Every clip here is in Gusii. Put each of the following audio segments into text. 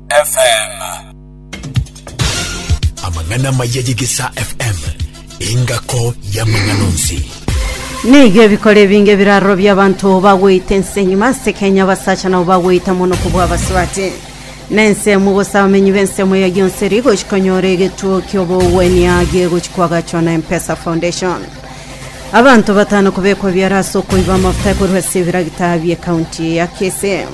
FM. Amang'ana amaya ye Gesa FM, engako y'amang'ana onsi. Nigo ebikora ebinge ebirarorobia abanto bagweita ense enyuma ase Kenya abasacha nabo bagweita mono kobua abasubati na ensemo gose abamenyi b'ensemo eyo yonse rigochi konyora egetuo ki'obogwenia giegochi kwagachwa na Mpesa Foundation abanto batano kobekwa biara ase okoiba amafuta ekorwa ase ebiragita bie kaunti ya Kisii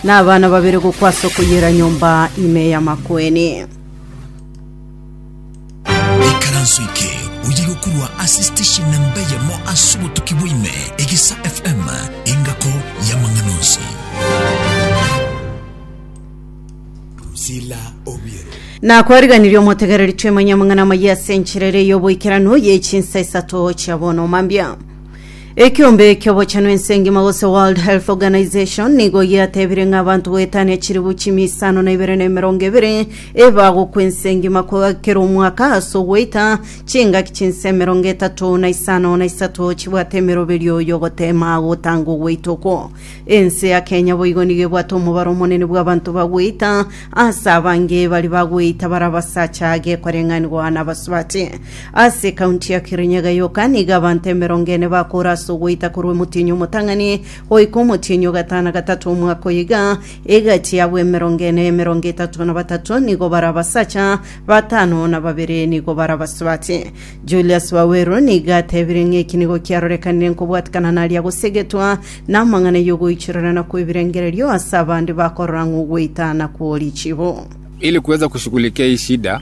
Nabana babere gokwa ase okoyiera nyomba ime y'amakwene. ikaranso eke oye gokurwa ase station namba eyemo ase obotuki bwaime egisa fm engako y'amang'ana onsi Sila Obiero. nakwariganirie omotegereri twemanye amang'ana amaya ase enchera ere y'oboikeranu y'echinsa isato chia bono mambia Ekeombe ki'obochenu ense engima gose World Health Organization nigo giatebire ng'a abanto goetania chilifu chimia isano na ibere na emerongo ebere ebagokwa ense engima ko- kera omwaka ase ogoita chingaki chinse emerongo etato na isano na isato chibwate emeroberio y'ogotema gotanga ogoita okwo. Ense ya Kenya boigo nigo ebwate omobaro omonene bw'abanto bagoita ase abange baria bagoita bare abasacha gekwareng'anigwa nabasubati. Ase ekaunti ya Kirinyaga yoka nigo abanto emerongo ene bakoora ase ogoita korwa omotienyi omotang'ani goika omotienyi o gatano gatato omwaka oyo iga. Egati y'abwo emerongo ene, emerongo etato na batato nigo bare abasacha, batano na babere nigo bare abasubati. Julius Waweru nigo atebirie ng'a eki nigo kiarorekanire nkobwatekana naria gosegetwa namang'ana y'ogoichorera na kw'ebirengererio ase abande bakorora ng'a ogoita nakwo richibo. Ili kuweza kushughulikia hii shida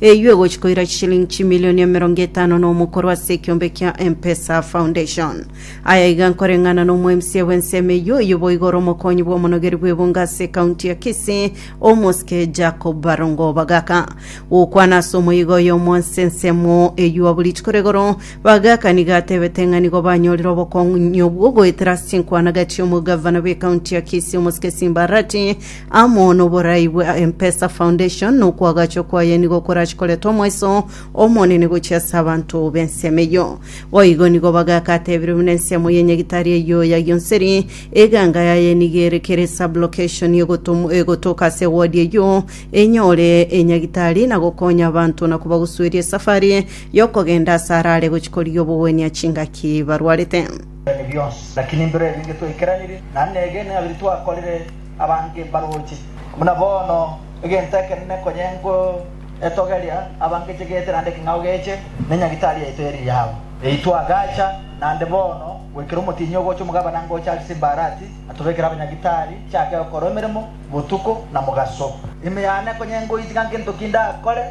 Eyio egochi koira chishilingi chimilioni emerongo etano na omokoro ase ekiombe kia M-Pesa Foundation. Aya iga nkoreng'ana na omoemisia bw'ensemo eyio, oyio boigo ore omokonyi bw'omonogeri bw'ebungo ase ekaunti ya Kisii, Omosike Jacob Barongo Bagaka. Gokwana ase omoyiga oyomo ase ensemo eyio abwo rituko rigoro, Bagaka nigo atebete ng'a nigo banyorire obokong'u nyobwo goetera ase chinkwanagati omogavana bw'ekaunti ya Kisii Omosike Simba Arati, amo noborai bwa M-pesa Foundation nokwagachwa kwaye nigo korache koreta omweso omonene gochia ase abanto b'ensemo eyio. Boigo nigo bagaka atebire buna ensemo y'enyagitari eyio yagionseri, eganga yaye nigo ere kere sub-location egotom- egotoka ase ewodi eyio enyore enyagitari na gokonya abanto na kobagusueria esafari y'okogenda ase arare gochia korigia obogwenia chingaki barwarete. Ebio bionsi lakini mbiro ebi ingetwaikeraniri, naende negene abiri twakorire Abange mbaroche, buna bono egento ekenene konye nkoetogeria, abange chegete naende eking'a ogeche ne nyagitari yaito ye riao. Yaitwa agacha naende bono goikera omotienyi ogocha omogabana ngocha ase Simbarati atobekere abanyagitari, chiake gokorwa emeremo botuko na mogaso. Ime yane konye nkoitiga ngento ki ndakore,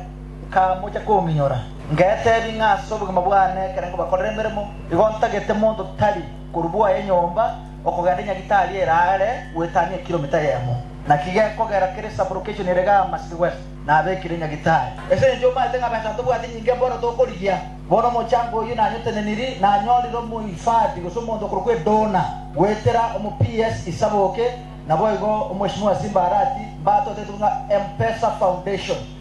nkamocha kominyora, ngetebi ng'a ase obogima bwane ekero nkobakorera emeremo, igo ntagete monto tari korwa bwaya enyomba, Okogenda Nyagitari eraare goetania ekiromita eyemo, naki gekogera kere sublocation ere gama City West. Nabekire Nyagitari ase engencho omaete ng'a besa tobwati nyinge bono tokorigia. Bono omochango oyio nanyoteneniri, nanyorire omohifadhi gose omonto okorokwa Edona goetera omo PS Isaboke, naboigo Omweshimiwa Simba Arati mbatoteti buna Mpesa Foundation.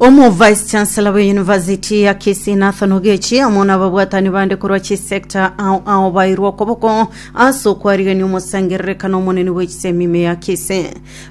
Omo Vice Chancellor bwe University ya Kisii Nathan Ogechi amo na ababwatani bande korwa chisector ao ao bairwe okoboko ase okwarigania omosangererekano omonene bwe chisemi ime ya Kisii.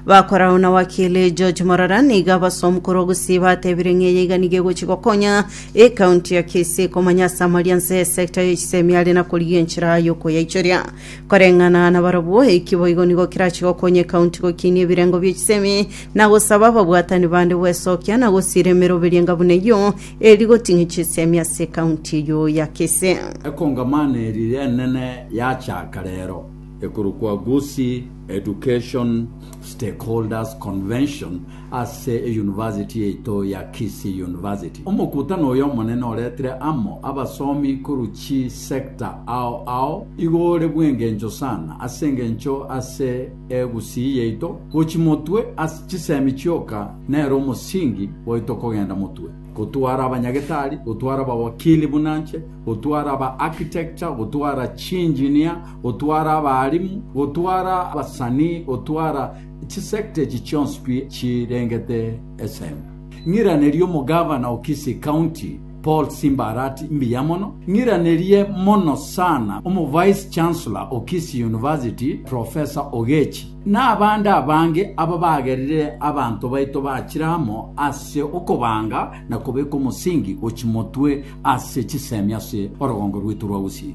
Bakorao na wakili George Morara nigo abasomu korwa Gusii batebire ng'a eye iga nigo egochi gokonya ecounty ya Kisii komanya ase amaria nse y'esector ye chisemi are na korigia enchera y'okoyaichoria. Koreng'ana nabarabwo, eki boigo nigo kerache gokonya ecounty gokinia ebirengo bie chisemi na gosaba ababwatani bande gwesokia na gosiira emeroberio enga buna eyio, eri rigoting'ia chisiemi ase ekaunti eyio ya Kisii. Ekongamano eria enene yachaaka rero ekorokwa Gusii Education Stakeholders Convention ase eyunivasiti yaito ya Kisii University. Omokutano oyo omonene oretire amo abasomi korwa chisector ao ao igore bw'engencho sana ase engencho ase Egusii yaito gochia motwe ase chisemi chioka nere omosingi oito kogenda motwe, gotwara abanyagetari, gotwara abawakili buna nche, gotwara aba architecture, gotwara chiengineer, gotwara abaalimu, gotwara abasanii, gotwara chisector echi chionsi pi chirengete esemi. Ng'iraneria omogavana o Kisii County. Paul Simbarati mbuya mono, ng'iranerie mono sana omo Vice Chancellor o Kisii University Professor Ogechi, na abande abange aba bagerire abanto baito bachire amo ase okobanga na kobeka omosingi gochimotwe ase chisemi ase orogongo rwaito rwa Gusii.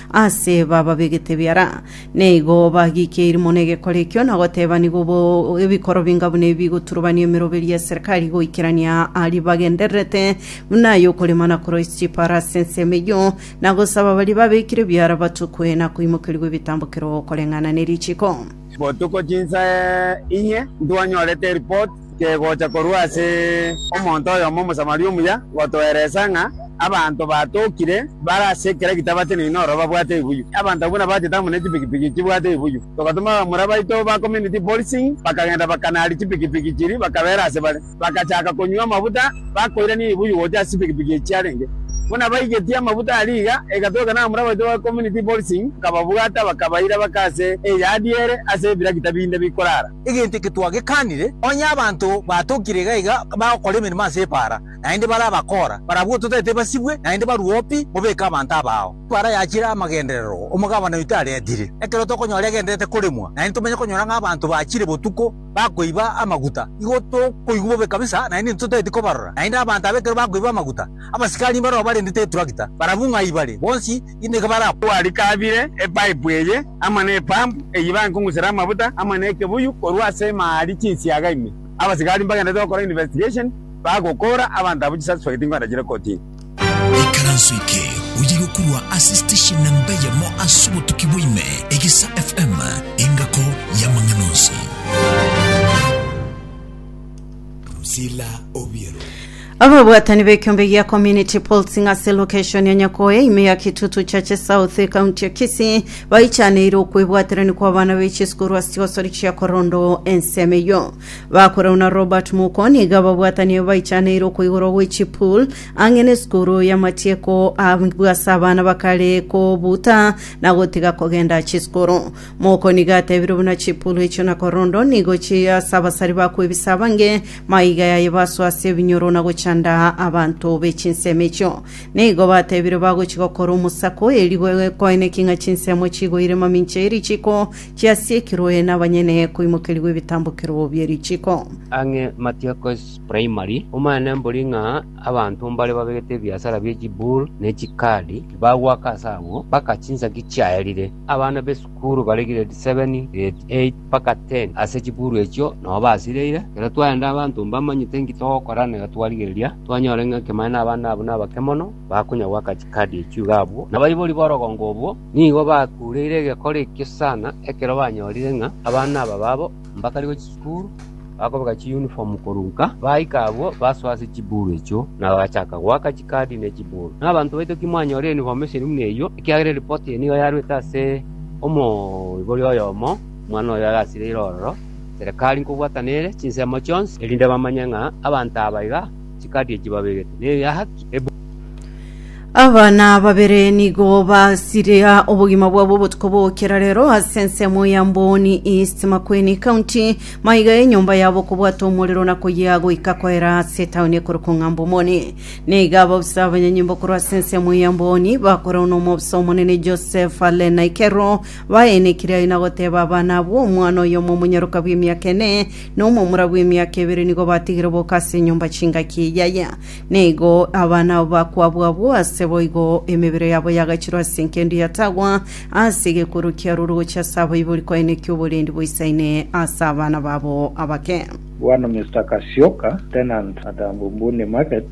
Aase bababegete biara, na igo bagiikeiri mono egekora ekio, na goteba, Nigo bo ebikoro binga buna ebi bigoturubania emeroberi y'eserikari goikerania aria bagendererete, buna ay'okorema na koroisia chipaaro ase ensemo eyio, na gosaba baria babekire biara batukwe na koimokerigwa ebitambokero koreng'ana ne richiiko. Botuko chinsa inye ntwanyorete eripoti. Kegocha korwa ase omonto oyomo Omosamaria omuya gotoeresa ng'a abanto batokire bare ase ekera gitabate neino ororo babwate ebuyu. Abanto abwo nabachete amo ne chipikipiki chibwate ebuyu. Togatoma abamura baito ba Community Policing bakagenda bakanari chipikipiki chiria bakabera ase bare. Bagachaka konywa amabuta bakoirania ebuyu gocha ase chipikipiki echi chiarenge. Buna baigetie amabuta aria iga, egatoegena abamura baito ba Community Policing bakababwata bakabaira baka ase eyadi ere ase ebiragita binde bikorara. Egento eke twagekanire, onye abanto batokire iga iga bagokora emeremo ase epaara, naende bare abakora, barabwo ototaete basibwe, naende barue opi, mobeke abanto abao. Epaara yachire amagenderero omogabana oito aretire. Ekero tokonyora egendererete koremwa, naende tomenye konyora ng'a abanto bachire botuko bakoiba amaguta, igo tokoigwa bobe kabisa, naende ntotaeti kobarora. Naende abanto aba ekero bakoiba amaguta, abasikari mbarao barendete eturakita, barabwo ng'ai bare, bonsi, nigo barakore. Twarikabire epaipu eye amo ne epampu eyio bankong'usera amabuta amo ne ekebuyu korwa ase emari chinsiaga ime. Abasigari mbagenderete gokora investigation bagokora abanto abwo chisuspect nkoranchire kotini. Ikaranso eke oyeirwe korwa ase station namba eyemo ase obotuki bwa ime, Egesa FM, engako y'amang'ana onsi. Sila Obiero. Ababwatani b'ekiombe gia Community Pulse ng'ase location ya Nyakoe ime ya Kitutu Chache South ekaunti ya Kisii baichaneire okwebwaterani kwa abana be chisukuru ase chigosori chia korondo ensemo eyio bakorauna Robert Muko niga ababwatani abo baichaneire okoigorwa gwe chipool ang'e na esukuru ya matieko abwase abana bakare kobuta na gotiga kogenda chisukuru Moko nigo atebire buna chipulu echio na korondo nigo chiri ase abasari ba kwebisa abange, maiga yaye basoe ase ebinyoro na gochanda abanto be chinsemo echio. Nigo batebire bagochi gokora omosako, erio goe- koeneki ng'a chinsemo chigoire mamincha ye richiko chiasiekirwe na abanyene koimokerigwa ebitambokero bie richiko. Ang'e Matiakos Primary, omanyene mbori ng'a Abanto mbare babegete ebiasara bie chibull ne chikaadi bagoaka aase agwo, mpaka chinsaki chiaerire. Abana b'esukuru bare grade seven, grade eight, mpaka ten ase chibull echio nao basireire. Ekero twaenda abanto mbamanyete inki togokora na iga twarigereria twanyora ng'a ekemane nabana abwo nabake mono bakonya goaka chikaadi echio iga abwo. Na abaibori b'orogongo obwo nigo bakureire egekora ekio sana ekero banyorire ng'a abana aba babo Mbakare gwe chisukuru, bakobeka chiyunifomu korwa nka. Baika abwo, basoa ase chiburu echio, na bagachaka goaka chikadi ne chiburu. Na abanto baito timwanyora eyunifomu eseri buna eyio, ekiagera eripoti eye nigo yarwete ase omoibori oyomo, omwana oyo agasireire ororo, serekari nkobwatana ere chinsemo chionsi, erinde bamanye ng'a abanto aba iga chikati echi babegete, neyaki ebuya. Abana babere nigo basiria obogima bwabo obotuko bokera rero ase ensemo ya Mboni East Makueni County maiga enyomba yabo kobwata omorero na koyea goika koera ase etaoni ekorokwa Ng'ambo Moni. Neiga ababusa abanyanyimbo korwa ase ensemo ya Mboni bakorwa n'omobusa omonene Joseph Alena Ikero baenekire aye na goteba abana abwo omwana oyomo omonyaroka bw'emiaka ene na omomura bw'emiaka ebere nigo batigire boka ase enyomba chingaki yaya, na igo abana abo bakwabwa abwo ase boigo emebere yabo yagachirwa ase enkendo yatagwa ase egekorwa kia roro gochia ase abaibori koenekia oborendi boisaine ase abana babo abake. Bwana Mister Kasioka, tenant at Ambunbuni Market,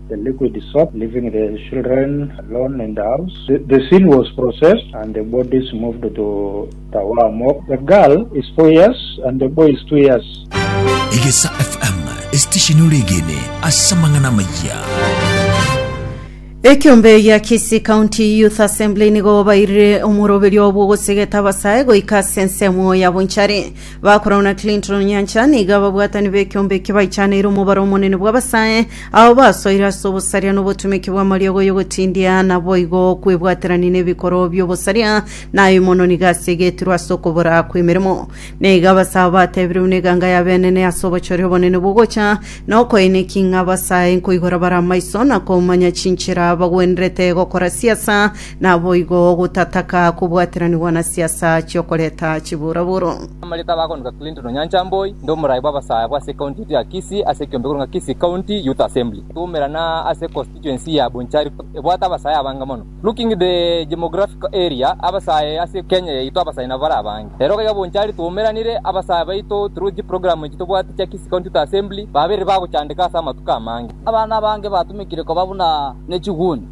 The liquid soap leaving the children alone in the house. The scene was processed and the bodies moved to Tawaa morgue. The girl is four years and the boy is two years. Egesa FM, esitesheni oregene ase amang'ana amayia. Ekiombe gia Kisii County Youth Assembly nigo bairire omoroberio bw'ogosegeta abasae goika ase ensemo ya bonchari. Bakorau na Clinton Nyancha nigo ababwatani b'ekiombe eke baichaneire omobaro omonene bw'abasae abo basoire ase obosaria na obotumeki bw'amariogo y'ogotindia, naboigo kwebwaterania n'ebikoro bi'obosaria na aye mono nigo asegetirwe ase okobora kw'emeremo. Na iga abasae abo batebirwe buna eganga ya benene ase obochori obonene bw'ogocha na okoeneki ng'a abasae nkoigora bare amaiso na komanya chinchera bagwenerete gokora siasa Naboigo gotataka kobwateranigwa na siasa chi'okoreta chiburoburo. Amariko abagonika Clinton Onyancha Mboi, inde omorai bw'abasae bwa ase county yaito ya Kisii ase ekiombe korwa ng'a Kisii County Youth Assembly twaumerana ase constituency ya Bonchari ebwate abasae abange mono. Looking the gemographical area abasae ase Kenya yaito abasae nabo bare abange. Rero gaiga Bonchari twaumeranire abasae baito through chiprogram echi tobwate chia Kisii County Youth Assembly babeire bagochandeka ase amatuko amange. Abana abange batumekire koba buna nechiguni.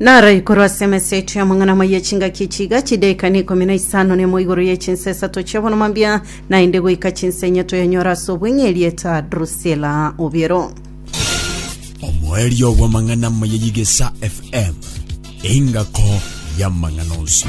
Naro ikorwa ase emeseti amang'ana amaya chingaki echi iga chidaika na ikomi na isano nemo igoro ye chinsa esato chi'obono mambia, naende goika chinsa enya toyanyore ase obweng'e erieta Drusila Obiero. Omoerio bw'amang'ana amaya y'Igesa FM, engako y'amang'ana onsi.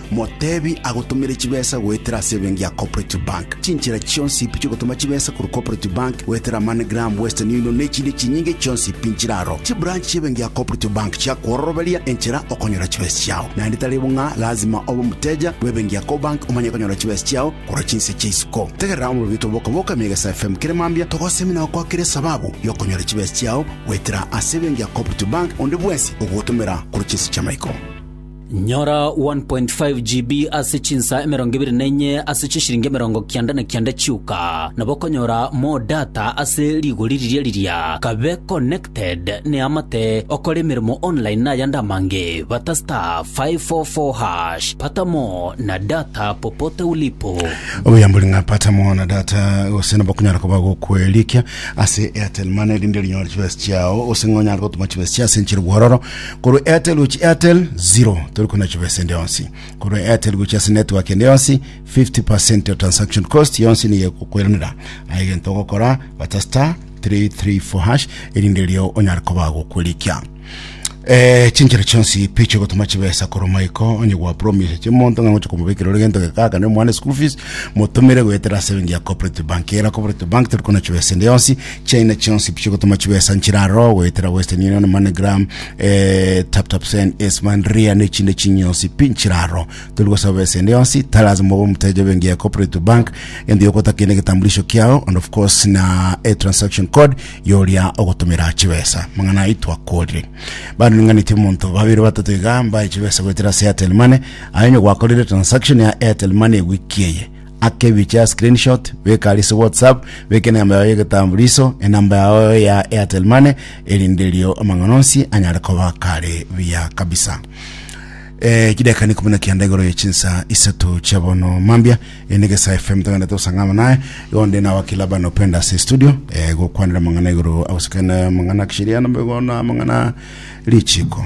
Motebi agotomere chibesa goetera ase ebenki ya Cooperative Bank. Chinchera chionsi pi chiogotoma chibesa korwa Cooperative Bank goetera MoneyGram, Western Union na echinde chinyinge chionsi pi nchire aro. Chibranch chi'ebenki ya Cooperative Bank chiakwororoberia enchera okonyora chibesa chiao. Naende tari bo ng'a lazima obe omoteja bw'ebenki ya Cobank omanye konyora chibesa chiao korwa chinse chia isiko. Tegerera omorobito bw'okoboka mia egesa FM kere mambia togosemi na gokwakera esababu y'okonyora chibesa chiao goetera ase ebenki ya Cooperative Bank onde bwensi ogogotomera korwa chinse chi'amaiko. Nyora 1.5 GB ase chinsa emerongo ebere na enye ase chishiringi emerongo kianda na kianda chioka, nabo okonyora more data ase rigori riria riria. Kabe connected neamate okore emeremo online nayande amange, bata *544#, pata more na data popote ulipo. Obuyambori ng'a pata more na data gose nabo okonyara koba gokwerikia ase Airtel Money rinde rinyore chibesa chiao gose ng'a onyare gotuma chibesa chia ase enchera bwororo Korwa Airtel gochia Airtel, zero. Tori konachiba esende yonsi. Korwa Airtel gochia ase network ende yonsi, 50% ya transaction cost yonsi nigo egokweranera. Aye egento ogokora, bata star 334 hash, erinde erio onyare koba agokorikia. Eh, chinchera chionsi picho egotoma chibesa korwa maiko onye gwa promise chimonto ng'a ngocha komobekera ore gento gekaka ne mwana school fees motomere goetera ase bengi ya cooperative bank era cooperative bank tori kona chibesa ende yonsi China chionsi pi chigotoma chibesa nchiraro goetera Western Union, MoneyGram, eh, TapTapSend, Aceman, Ria ne chinde chinyionsi pi nchiraro. Tori gosaba besa ende yonsi, taras mobe omuteja bengi ya Cooperative Bank, ende yokota kende getambulisho kiao and of course na a transaction code yoria ogotomera chibesa. Mang'ana ai twakorire. Bado ninganeti omonto babere batato iga mbae chibesa goetera ase Airtel Money. Aye onye gwakorire transaction ya Airtel Money wiki eye, akebiche a screenshot beka ari ase whatsapp beka enamba yao y'egetambuliso enamba yao ya airtel money erinde erio amang'ana onsi anyare koba kare buya kabisa Eh, chideka ni kumina kianda igoro ya chinsa isato chia bono mambia ene gesa fm togenda tosangama naye gonde na wakila bana upenda ase studio eh, gokwanira mang'ana igoro agosekana mang'ana kishiriano megona mang'ana lichiko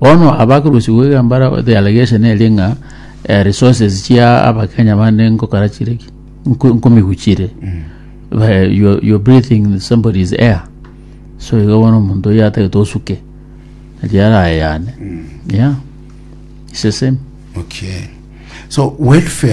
Bono abakorusigwa iga mbare the allegation eria ng'a eh, resources chia abakenya bande nkokora chire ki nko- nkomihuchire Ba- you're, you're breathing somebody's air so iga bono omonto oyo atagete osuke eria arayane yeah it's the same okay so welfare